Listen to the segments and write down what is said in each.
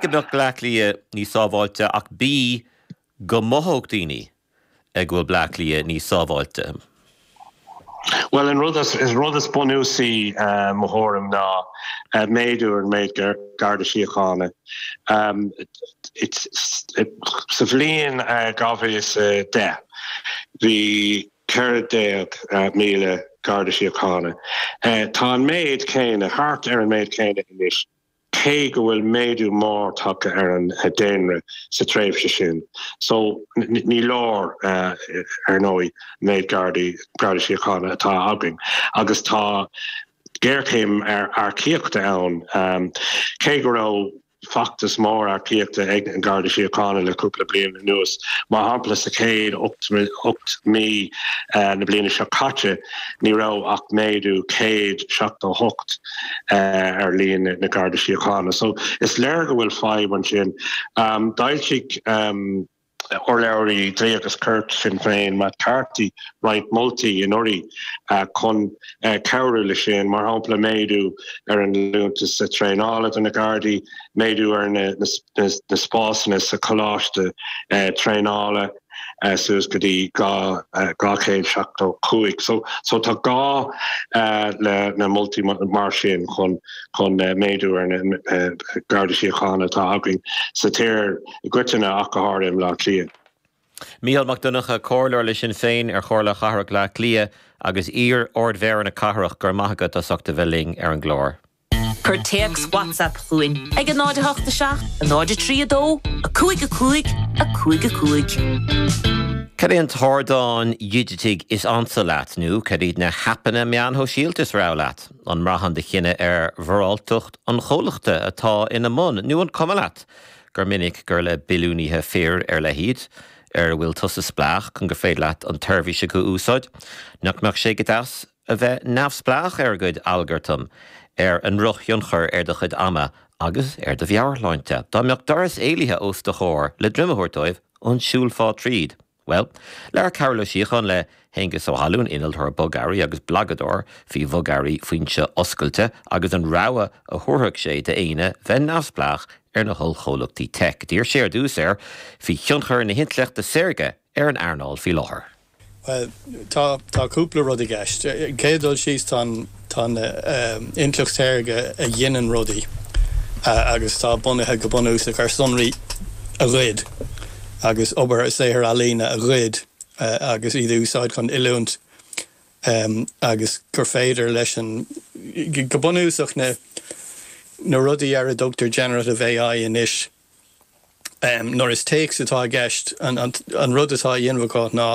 go mbeadh Bleá Cliath níos sábháilte ach B go mothódh daoine go bhfuil Bleá Cliath níos sábháilte? Bhuel, an rud is bunúsaí, i mo thuairim, ná méadú ar an méid Garda Síochána. Sa bhliain 2010, bhí 14,000 Garda Síochána. Tá an méid céanna, thart ar an méid céanna anois. cé go bhfuil méadú mór tagtha ar an daonra sa tréimhse sin. So, ní leor, ar ndóigh, méid Gardaí, Garda Síochána atá againn. Agus tá géarchéim earcaíochta ann. Cé go raibh feachtas mór earcaíochta ag an Garda Síochána le cúpla bliain anuas, mar shampla sa chéad ocht mí na bliana seo caite, ní raibh ach méadú 178 ar líon na Garda Síochána. So is léir go bhfuil fadhb ansin. Um, D'fhoilsigh um, urlabhraí Dlí agus Cirt Sinn Féin Matt Carthy roinnt moltaí anuraidh uh, chun uh, cabhrú leis sin, mar shampla méadú ar an liúntas sa traenála do na Gardaí, méadú ar na, na, na, na spásanna sa coláiste uh, traenála, uh, suas go dtí 275. So, so tá gá uh, le, le moltaí mar sin chun, chun uh, méadú ar na uh, Gardaí Síochána atá againn sa tír i gcoitinne ach go háirithe i mBleá Cliath. Mícheál Mac Donncha, comhairleoir le Sinn Féin ar Chomhairle Cathrach Bhleá Cliath agus iar-Ard-Mhéara na Cathrach, go raibh maith agat as ucht a bheith linn ar an gclár. Cuir téacs WhatsApp chugainn ag 08 7 03 2 5 5 5 5. Cad é an t-ardán dhigitigh is ansa leat nó cad iad na haipeanna meán shóisialta is rogha leat? An mbraitheann do chinneadh ar mhoráltacht an chomhlachta atá ina mbun nó an cuma leat gur minic gur le billiúnaithe fir ar leith iad ar a bhfuil tusa spleách chun gur féidir leat an tseirbhís acu a úsáid? Nach mbeadh sé go deas a bheith neamhspleách ar a gcuid algartam, ar a ndrochthionchar ar do chuid ama agus ar do mheabhairshláinte. Dá mbeadh doras éalaithe os do chomhair le droim a thabhairt dóibh, an siúlfá tríd? Bhuel, labhair Cearbhall Ó Síocháin le hAonghus Ó hAlmhain, innealtóir bogearraí agus blagadóir faoi bhogearraí foinse oscailte agus an rogha a thabharfadh sé d'éinne bheith neamhspleách ar na hollchomhlachtaí teic. D'iarr sé ar dtús air faoi thionchar na hintleachta saorga ar ar an earnáil faoi láthair. Bhuel, tá, tá cúpla rud i gceist. Ar an gcéad dul síos, tá an, tá an intleacht shaorga a ghineann rudaí agus atá bunaithe go bunúsach ar sonraí a ghoid agus obair, saothair ealaíne a ghoid agus iad a úsáid chun oiliúint agus gur féidir leis an, go bunúsach na, na rudaí ar a dtugtar generative AI anois, nuair is téacs atá i gceist, an rud atá a dhéanamh acu ná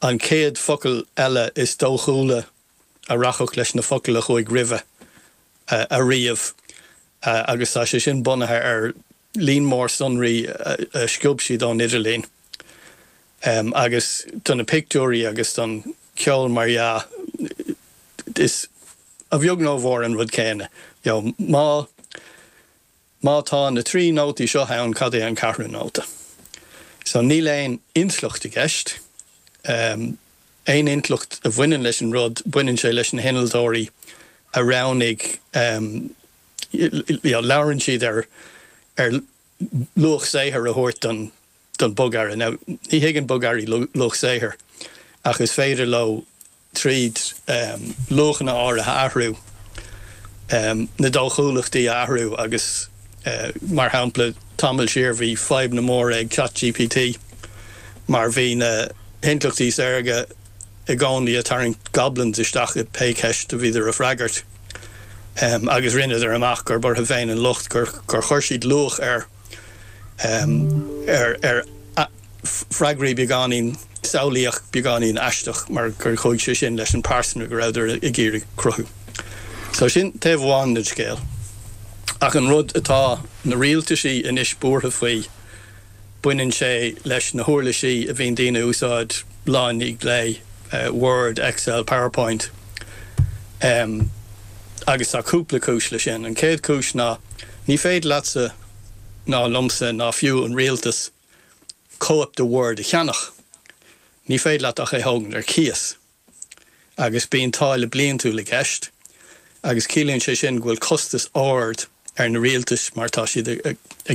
an chéad focal eile is dóchúla a rachadh leis na focail a chuaigh roimhe a ríomh agus tá sé sin bunaithe ar líon mór sonraí a sciob siad ón idirlíon agus do na pictiúirí agus don cheol, mar dheá, is a bheag nó a mhór an rud céanna. Má. Má tá na trí nótaí seo ann, cad é an ceathrú nóta? So, níl aon intleacht i gceist. Aon intleacht a bhaineann leis an rud, baineann sé leis na hinnealtóirí a roghnaigh, you know, labhrann siad ar, ar luach saothair a thabhairt don, don bogearra. Now, ní thuigeann bogearraí luach saothair, ach is féidir leo, tríd luachanna áirithe a athrú, na dóchúlachtaí a athrú agus, mar shampla, tamall siar bhí fadhbanna móra ag Chat GPT mar bhí na hintleachtaí saorga i gcónaí a tarraingt goblins isteach i pé ceist a bhíodar a freagairt agus rinneadar amach gurb orthu féin an locht gur chuir siad luach ar ar freagraí beagáinín samhlaíoch, beagáinín aisteach, mar gur chuaigh sé sin leis an pearsa go rabhadar ag iarraidh cruthú. So sin taobh amháin den scéal. Ach an rud atá na rialtaisí anois buartha faoi, baineann sé leis na huirlisí a bhíonn daoine a úsáid lá i ndiaidh lae, Word, Excel, Powerpoint. Agus tá cúpla cúis le sin. An chéad chúis ná ní féidir leatsa ná liomsa ná fiú an rialtas cóip de Word a cheannach. Ní féidir leat ach é a thógaint ar cíos. Agus bíonn táille bliantúil i gceist agus ciallaíonn sé sin go bhfuil costas ard ar na rialtais mar tá siad ag